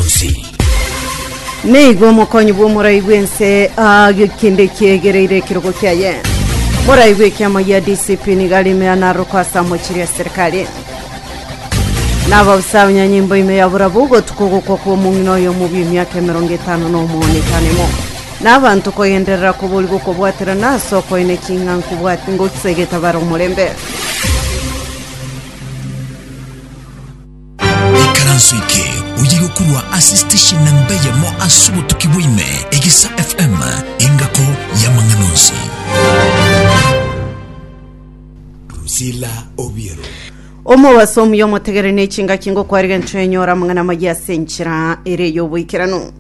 bonsi. Nigo omokonyi bw'omorai bw'ense aagio kende kiegereire ekerogo kiaye. Morai bw'ekiama gia DCP nigo arimera naroko ase amochiri ya serikali. Nababusa abanyanyimbo ime ya burabu gotuka ogokwa kwa omong'ina oyo omobi emiaka emerongo etano na omono etanemo. N'abanto kogenderera koborigwa okobwaterana ase okoina eking'a nkobwat ngosegetabara omorembe. Ikaranso eke oye gokurwa ase station namba eyemo ase obotuki bwa ime, Egesa FM, engako y'amang'ana onsi. Drusilla Obiero. omobaso omuya omotegere ne chingaki ngokwariga enchwa enyora amang'ana amaya ase enchera ere y'oboikeranu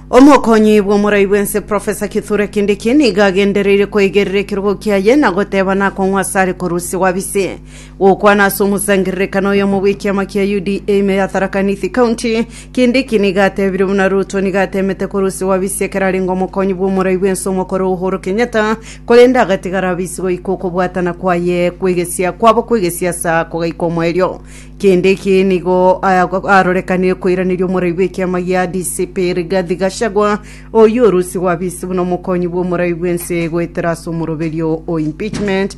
omokonyi bw'omorai bwense profesa kithure kindiki niga agendereire koigerera ekerogo kiaye na goteba nakong'wa asare korusia gwabise Gokwana ase omosangererekano oyomo bw'ekiama kia UDA ime ya Tharaka Nithi County, Kindiki nigo atebire buna Ruto nigo atemete korusia Wabisi ekero arenge omokonyi bw'omorai bw'ense omokoro Uhuru Kenyatta, korende agatigara Wabisi goika okobwatana kwaye kw'egesia kwabo kw'egesiasa kogaika omoerio. Kindiki nigo arorekanire koiraneria omorai bw'ekiama gia DCP Rigathi Gachagua oyio orusia Wabisi buna omokonyi bw'omorai bw'ense goetera ase omoroberio o impeachment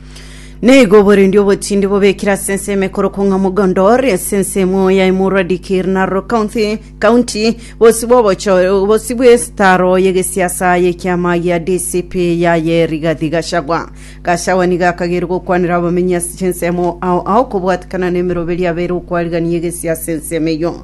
Naigo oborendi obotindi bobekire ase ensemo ekorokwa ng'a Mogondor, ase ensemo ya emurwa Dikir Narok County, County, bosi bw'obocho- bosi bw'esitaro y'egesiasa y'ekiama gia DCP yaye Rigathi Gachagua. Gachagua nigo akageire gokwanera abamenyi ase chinsemo ao ao kobwatekana n'emeroberi abeire okwarigania egesiasa ensemo eyio.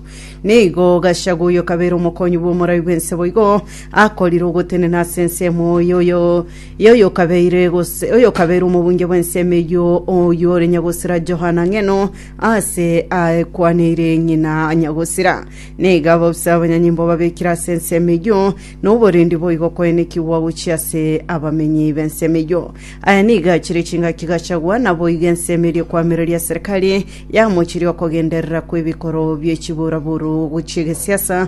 Naigo Gachagua oyo okabeire omokonyi bw'omorai bw'ense boigo akorire ogotenena ase ensemo y'oyo Ye oyokabeire gose oyokabeire omobunge bw'ensemo eyio, oyio ore nyagosira Johana ng'eno aase aekwaneire ng'ina nyagosira. Na iga ababisa abanyanyimbo babekire ase ensemo eyio, na oborendi boigo koenekigwa gochia ase abamenyi b'ensemo eyio. Aya nigo achire chingaki Gachagua, naboigo ensemo eria ekwamireria serikali yamochiria okogenderera kw'ebikoro bie chiburaburu gochia egesiasa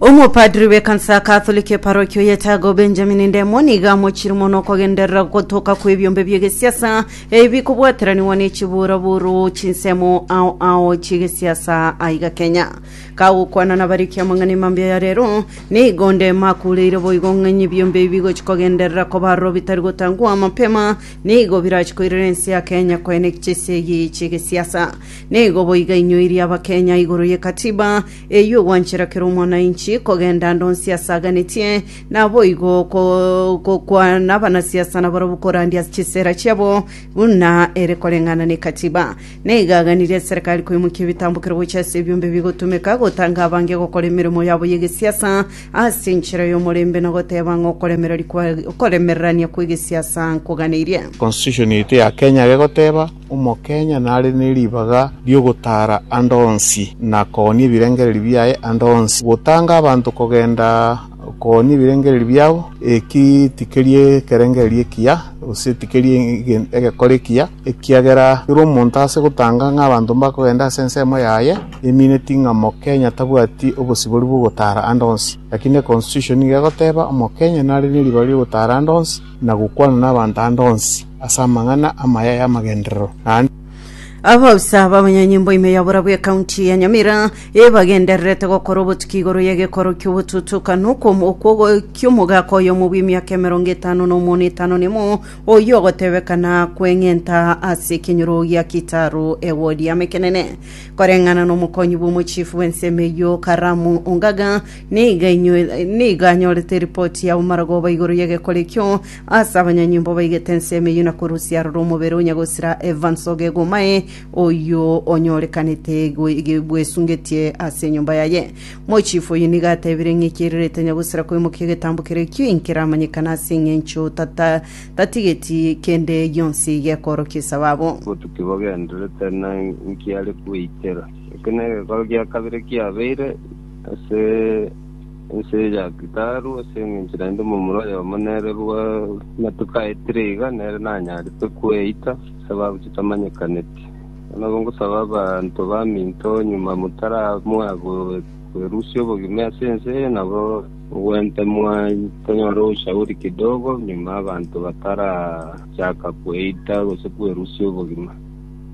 Omopadri bw'ekansa ya Katholiki eparokia o Yetago, Benjamin Ndemo, nigo amochiire mono okogenderera ogotoka kw'ebiombe bi'egesiasa ebi bikobwateranigwa ne chiburaburu chinsemo ao ao chi'egesiasa aiga Kenya. Kagokwana nabariki amang'ana 'emambia ya rero, nigo onde makureire boigo ng'a ng'a ebiombe ebi bigochi kogenderera koba aroro bitari gotangwa mapema nigo birachi koirera ense ya Kenya koeneg chisegi chi'egesiasa. Nigo boiga inyoiri abakenya igoro ye katiba Eyio gwanchera kera omwananchi kogenda ande onsi asaganetie, naboigo ko- gokwana abanasiasa nabarabwo korandia ase chisera chiabo buna ere koreng'ana nekatiba. Naiga aganirie eserekari koimokia ebitambokero gochia ase ebiombe ebigotumeka gotanga abange gokora emeremo yabo y'egesiasa ase enchera y'omorembe na goteba ng'a okoremereri kwa- okoremererania kw'egesiasa nkoganeirie. Constitution yaito ya Kenya egoteba Omokenya nare ne ribaga ri'ogotaara ande onsi, na koonia ebirengererio biaye ande onsi. Gotanga abanto kogenda koonia ebirengererio biabo, eki tikeri ekerengererio ekiya, gose tikeri egekore ekiya, ekiagera kera omonto ase gotanga ng'a abanto mbakogenda ase ensemo yaye, emineti ng'a Omokenya tabwati obosibori bw'ogotaara ande onsi. Lakini econstitution nigo egoteba, Omokenya nare ne ribaga ri'ogotaara ande onsi, na gokwana nabaanto ande onsi ase amang'ana amaya y'amagenderero, naende Abaofisa b'abanyanyimbo ime ya borabu ekaunti ya Nyamira ebagendererete gokora obotuki igoro y'egekoro ki'obotutukanu kw'om- kw'ogo- ki'omogaka oyomo bw'emiaka emerongo etano na omono etano nemo oyio ogotebekana kweng'enta ase ekenyoro gia Kitaru ewodi y'Amekenene koreng'ana nomokonyi bw'omochifu bw'ensemo eyio Karamu Ongaga Nigo ainyo- nigo anyorete eripoti ya omoragoba igoro y'egekore ekio, ase abanyanyomba baigete ensemo eyio na korusia aroro omobere o nyagosira Evans Ogegomae, oyio onyorekanete gwe- ge- bwesungetie ase enyomba yaye. Mochifu oyio nigo atebire ng'a ekiya riarete nyagosira koimokia egetambo kere ekio inkeramanyekana ase eng'encho tata- tatigeti kende gionsi gekoorokia esababu. Botuki bogendererete na inki are kweitera. Eke negekoro gia kabere kiabeire. Ase ense ya Kitaru, ase engencho naende omomura oyomo nere bw'amatuko aetire iga, nere nanyarete kweita ase abagochi tamanyekaneti. Ekero nabo ngosaba abanto baminto nyuma motaramua kwerusia obogima ase ense eye, nabo mogwente tonyore ushauri kidogo nyuma abanto batarachaka kweita gose kwerusia obogima.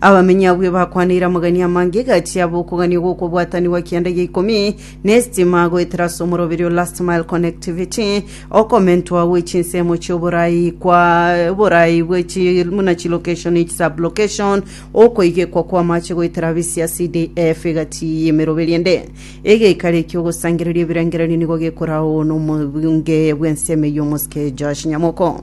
Abamenyi abwo ebakwaneire amagani amange egati yabo okogania gw'okobwatanigwa kianda gia ikomi na esitima goetera ase omoroberi o Last Mile Connectivity okomentwa gwe chinsemo chi'oborai kwa oborai bwe chi muna chilocation echi sublocation okoigekwa kw'amache goetera bisia CDF egati y'emeroberi ende egeikaro ekio ogosangereria ebirengererio nigo gekorawo n'omobunge bw'ensemo eyio omosike Josh Nyamoko.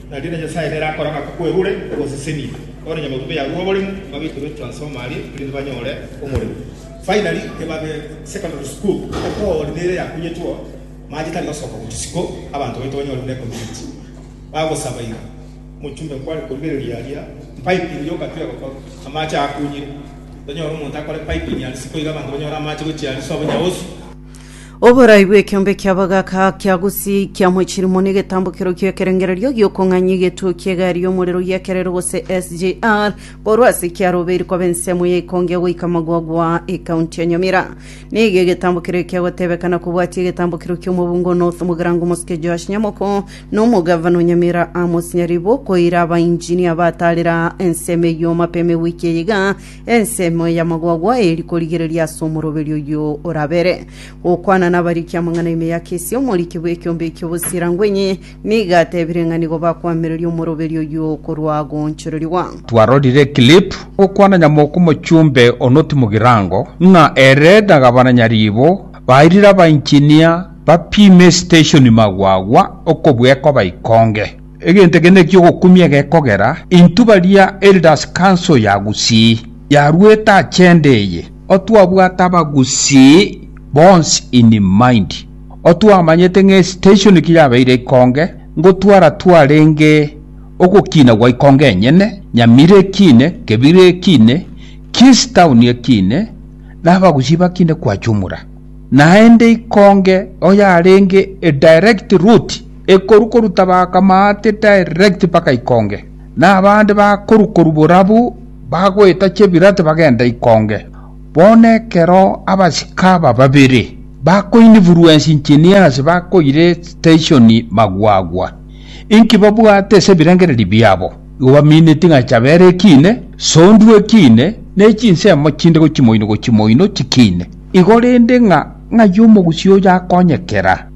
Na rirorio Nyasae nere akora ng'a kwerure ogosesenia kore nyamaboko yarure oboremu, babekerwe transformer aria erinde banyore omoremo. Finally ebabe secondary school etori nere yakunyetwo mache tari gosoka go chisiko abanto baito banyore buna ecommunity bagosaba iga omochumbe nkware korigereria aria piping yoka tire gokora amache akunyire tonyore omonto akore piping aria siko iga abanto banyore amache gochia aria sobo nyaosi. Oborai bw'ekiombe kia bagaka kia gusii kia mochilimo n'egetambokero ki'ekerengererio gi'okong'anyia egetuo ki'egari y'omorero y'ekerero gose SGR korwa ase ekiaro obeiri koba ensemo ya Ikonge goika Magogwa ekaunti ya Nyamira. Nigo egetambokero ekia gotebekana kobwatia egetambokero ki'omobungo o North Mugirango Omosuke Joash Nyamoko na omogavana o Nyamira Amos Nyaribo koira abainjinia batarera ensemo eyio mapema ewiki eye iga Ensemo ey'amagwagwa eri korigereria ase omoroberi oyio orabere, gokwana nabariki amang'ana ime ya kesi, omoriki bw'ekiombe eki'obosira ngwenyi, nigo atebire ng'a nigo bakoamereria omoroberi oyio korwa goonchorerigwa. Twarorire eclip gokwana Nyamoko Mochumbe Onoti Mugirango ng'a ere na Gavana Nyaribo bairire abaenginia bapime esiteshoni magwagwa okobua ekoba ikonge. Egento eke neki'ogokumia egekogera intwe baria Elders Council ya Gusii yaruete agenda eye, otwabwate Abagusii bonsi in mind, otwamanyete ng'a estation kiyabeire ikonge, ngotwara twarenge ogokina gwa ikonge enyene, Nyamira ekine, Kebira ekine, Kisii Town ekine, na Abagusii bakine kwa jumla. Naende ikonge oyarenge a direct route. Ekoru koruta bakamaate direct mpaka ikonge, na abande bakoru koru borabu bagoeta chebirate bagenda ikonge. Bono ekero abasike aba babere bakoinfluence engineers bakoire station magwagwa, inki babwate ase ebirengererio biabo? Igo baminetie ng'a Chabera ekine, Sondu ekine, ne chinsemo chinde gochia moino gochia moino chikine. Igo rende ng'a ng'ai omogusii oyo akonyekera?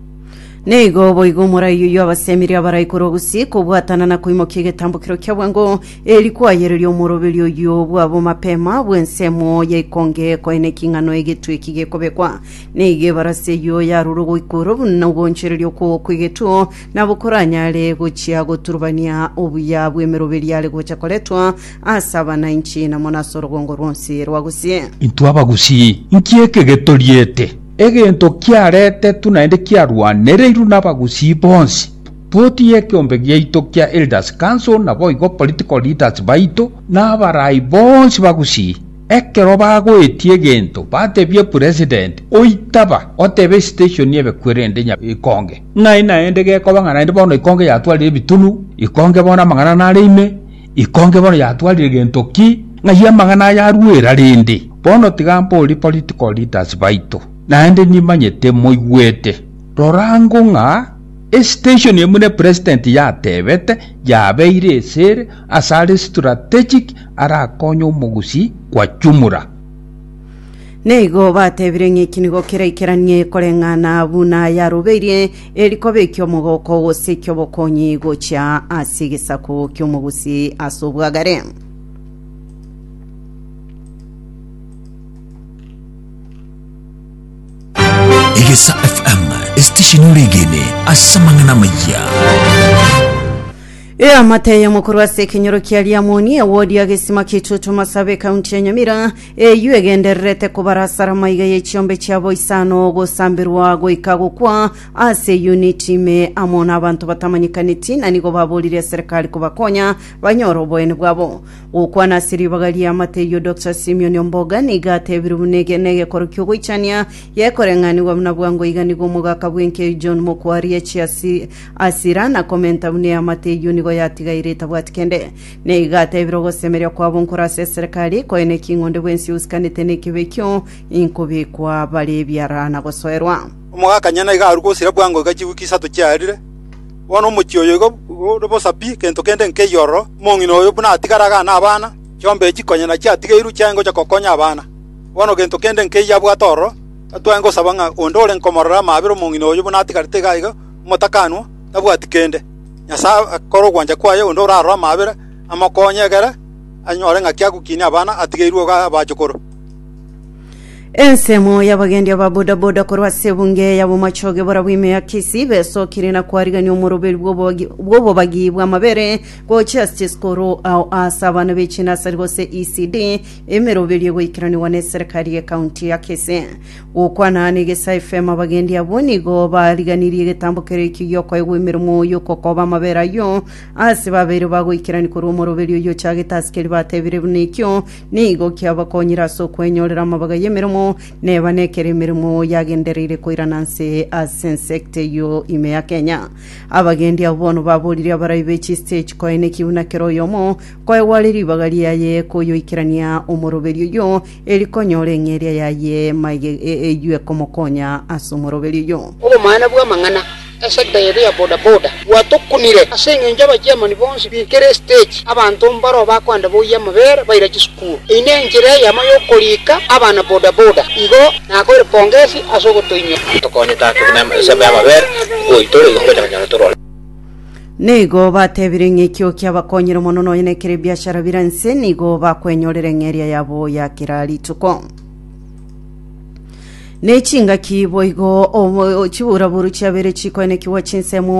Nigo boigo omorai oyio abasemeria abarai korwa gusii kobwatana na koimokia egetambukero kia bwango, eri kwayereria omoroberi oyio bwabo mapema bw'ensemo ya ikonge koena eking'ano egetwe eki gekobekwa. Nigo ebarasi eyio yarure ogoikorwa buna ogoonchoreria okwo kw'egetwe, nabo koranyare gochia goturubania obuya bw'emeroberi yare gocha koretwa ase abanainchi na mono ase orogongo rwonsi rwa gusii. Intwe Abagusii, nki eke getoriete? Egento kiaretetwe naende kiarwanereirwe nabagusii bonsi, Boti y'ekeombe giaito kia Elders Council naboigo political leaders baito na abarai bonsi bagusii. Ekero bagoetie egento batebie President oitaba otebe station y'ebekwerende nya ikonge ng'ai naende gekoba ng'a naende bono ikonge yatwarire ebitunu, ikonge bono amang'ana nare ime, Ikonge bono yatwarire gento ki ng'ai amang'ana aya aruera rende. Bono tiga mborie political leaders baito, naende nimanyete moigwete. Rora ango ng'a estation eye buna President yatebete yabeire esere ase are strategic arakonye omogusii kwa jumla. Neigo batebire ng'eki nigo keraikeranie koreng'ana buna yarobeirie Eri koba eki'omogooko gose eki'obokonyi gochia ase egesaku ki'omogusi ase obwagare. Egesa FM, esitesheni ore egene ase amang'ana amaya. Eamate eye mokorwa ase ekenyoro kia Liamoni, ewodi ya gesima k'Itutu Masabe, ekaunti ya Nyamira, eyio egendererete kobarasara amaiga y'echiombe chiabo isano gosamberwa goika gokwa ase eyuniti ime amo n'abanto batamanyekaneti na nigo baborire eserekari kobakonya banyore oboyene bwabo. Gokwana ase ribaga ri'eamate eyio Doctor Simion Omboga nigo atebire buna ege negekoro ki'ogoichania gekoreng'anigwa buna bwango iga nigo omogaka bw'enki John Mokwarie achiasi Asira na komenta buna eamate eyio nigo yatigaire etabwati kende. Na iga atebire ogosemeria kwabo nkore ase eserekari, koene ki ng'onde bwensi ousikanete nekibe ekio, inkobekwa bare ebiara na gosoerwa. Omogakanyene iga arue gosira bwango iga chiwiki isato chiarire. Bono omochie oyo igo ore bosa pi, gento kende nkeiyo ororo. Omong'ina oyo buna atigare iga na abana, chiombe echi konya nachio atigeirwe chiaye ngocha gokonya abana. Bono gento kende nkeiyo abwate ororo, gatware ngosaba ng'a onde ore nkomorora amaabera omong'ina oyo buna atigarete iga iga, omotakanwa, tabwati kende. Nyasae akore ogwancha kwaye onde orarore amaabera amokonye egere anyore ng'aki agokinia abana atigeirwe iga abachukuru. Ensemo y'abagendi aba bodaboda korwa ase ebunge ya bomachoge bora bw'ime ya Kisii besokire na kwarigania omoroberi bw'obobagi- bw'obobagi bw'amabere bwa Justice Koro ao ase abana b'echinasari gose ECD emeroberio egoikeranigwa na eserekari ye county ya Kisii. Gokwana negesae fm abagendi abwo nigo bariganirie egetambo keria ekio giokoegwa emeremo y'okokoba amabere ayio ase babeire bagoikerani korwa omoroberi oyio ochagete ase keria batebire buna ekio nigo kiabakonyire ase okwenyorera amabaga y'emeremo neba nekero emeremo yagendereire koirana nse ase ensecta eyio ime ya kenya abagendi abo bono baboririe abarai be chistage koeneki buna kero oyomo koegwa are ribaga riaye koyoikerania omoroberi oyio Eri konyora eng'eria yaye maiga eywe komokonya ase omoroberio oyio. Obomaene bw'amang'ana, Esekta yaito ya Boda Boda gwatokunire ase engencho y'abachairman bonsi binkere estage abanto mbaro bakoenda boyie amabere baira chisukuru. Eyi ne enchera eyemo y'okorika abana Boda Boda. Igo nakoire pongesi ase ogotoinyora. Tokonyete ake buna esabu y'amabere, oboitere, igo ngocha konyora tore ore. Nigo batebire ng'a ekio kiabakonyire mono nonya nekere ebiashara bire nse nigo bakwenyorera eng'eria yabo ya kera rituko nechingaki boigo obo- chiburaboru chiabere chikoenekigwa chinsemo